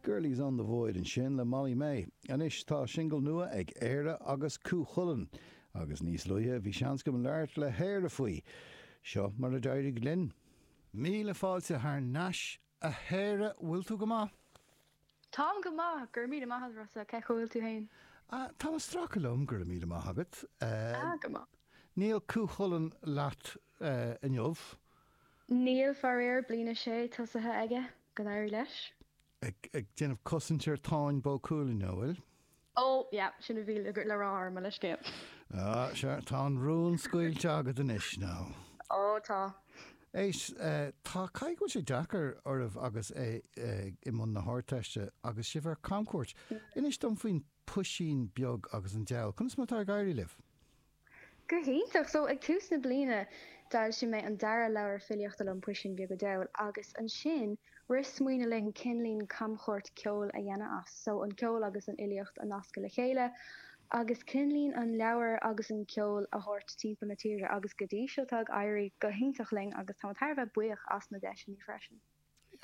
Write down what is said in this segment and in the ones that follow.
Girlie's on the Void ansin le Molly May. Anois tá singil nua ag Éire agus Cú Chulainn agus níos luaithe bhí seans agam labhairt le hÉire faoi. Seo mar a d'éirigh linn. Míle fáilte thar n-ais a Éire, bhfuil tú go maith? Táim go maith, go raibh míle maith agat Rossa, cén chaoi a bhfuil tú féin? Ah, táim ag stracadh liom, go raibh míle maith agat. Ah, go maith. Níl Cú Chulainn leat inniu? Níl, faraor. Bliain a sé tosaithe aige. Go n-éirí leis. Ag déanamh cosaint ar Táin Bó Cúailnge, an bhfuil? Ó, yeah. Sin a bhí le rá ar mo leithscéal. Ó, sea. Tá an rún scaoilte agad anois, now. Ó, tá. Éist, tá. Caithfidh go bhfuil sé deacair oraibh agus é i mbun na hArdteiste agus sibh ar camchuairt. Inis dom faoin puisín beag agus an diabhal. Conas mar atá ag éirí libh? Go hiontach! So ag tús na bliana d'fhoilsigh mé an dara leabhar filíochta liom, Puisín Beag a' Diabhail, agus ansin rith smaoineamh linn cineáilín camchuairt ceoil a dhéanamh as. So an ceol agus an fhilíocht a nascadh le chéile agus cineáilín an leabhar agus an ceol a thabhairt timpeall na tíre. Agus go dtí seo tá ag éirí go hiontach linn agus táimid thar a bheith buíoch as na deiseanna freisin.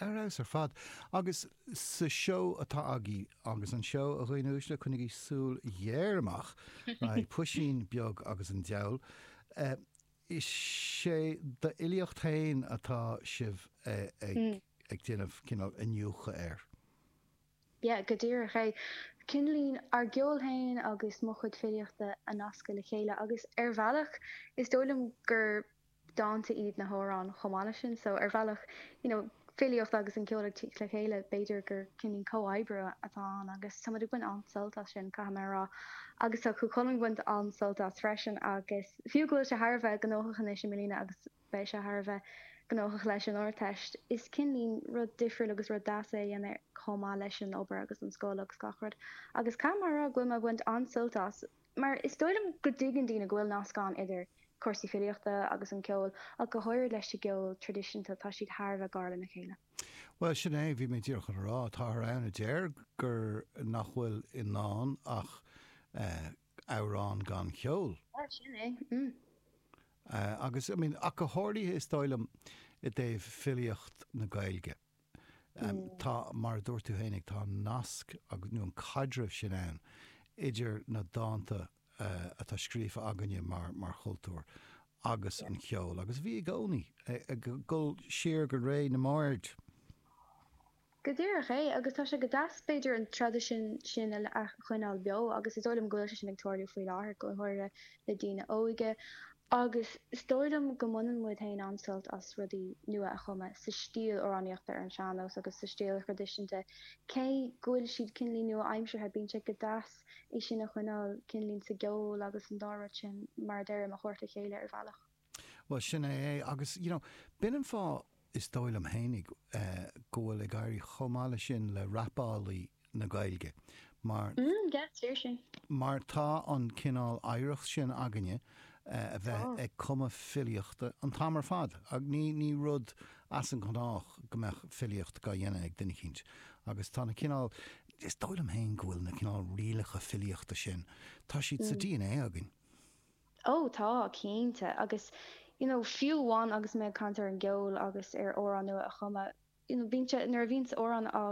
Ar fheabhas ar fad. Agus sa seó atá agaibh, agus an seó, a dhaoine uaisle, coinnigí súil ghéar amach, beidh Puisín Beag agus an Diabhal. Is é d'fhilíocht féin atá sibh ag déanamh cineál iniúchadh air. Yeah, go díreach é. Cineáilín, ár gceol féin agus mo chuid filíochta a nascadh le chéile. Agus ar bhealach, is dóigh liom gur. dánta iad na hamhráin chomh maith leis sin so ar bhealach you know filíocht agus an ceol ag tíocht le chéile b'fhéidir gur cineáilín comhoibriú atá ann agus táimid ag baint an-sult as sin caithfidh mé a rá agus tá Cú Chulainn ag baint an-sult as freisin agus fiú go bhfuil sé thar a bheith gnóthach anois i mbliana agus beidh sé thar a bheith gnóthach leis an Ardteist is cineáilín rud difriúil agus rud deas é a dhéanamh chomh maith leis an obair agus an scoil agus gach rud agus caithfidh mé a rá go bhfuil mé ag baint an-sult as Mar is dóigh liom go dtuigeann daoine go bhfuil nasc ann idir cúrsaí filíochta agus an ceol, ach go háirid leis an gceol traidisiúnta, tá siad thar a bheith gar lena chéile. Bhuel, sin é, bhí mé díreach chun a rá. Táthar ann a deir gur, nach bhfuil i ndán ach amhrán gan cheol. Bhuel, sin é, mm. Agus, I mean, ach go háirithe is dóigh liom i dtaobh filíocht na Gaeilge. Tá, mar a dúirt tú féin, tá an nasc nó an caidreamh sin ann idir na dánta atá scríofa againne mar chultúr agus an cheol agus bhí i gcónaí ag dul siar go ré na mbard. Go díreach é, agus tá sé go deas b'fhéidir an traidisiún sin a choinneáil beo agus is dóigh liom go bhfuil sé sin ag tarlú faoi láthair go háirithe le daoine óige agus is dóigh liom go mbaineann muid féin an-sult as rudaí nua a chumadh sa stíl amhránaíochta ar an sean-nós agus sa stíl thraidisiúnta cé go bhfuil siad cineál nua-aimseartha, bíonn sé go deas é sin a choinneáil cineál sa gceol agus an dá rud sin mar a deirim, a thabhairt le chéile ar bhealach. Bhuel, sin é é. Agus, you know, b'in an fáth, is dóigh liom fhéinig, go bhfuil ag éirí chomh maith leis sin le rapálaí na Gaeilge, mar, mar tá an cineál oidhreacht sin againne, a bheith ag cumadh filíochta an t-am ar fad, agus ní, ní rud as an ngnách go mbeadh filíocht dhá dhéanamh ag duine eicínt. Agus tá na cineál, is dóigh liom féin go bhfuil na cineál rialacha filíochta sin, tá siad sa dna againn. Ó, tá, cinnte. Agus, you know, fiú amháin agus mé ag caint ar an gceol agus ar amhráin nua a chumadh, you know, bíonn sé, nuair a bhíonns amhrán á.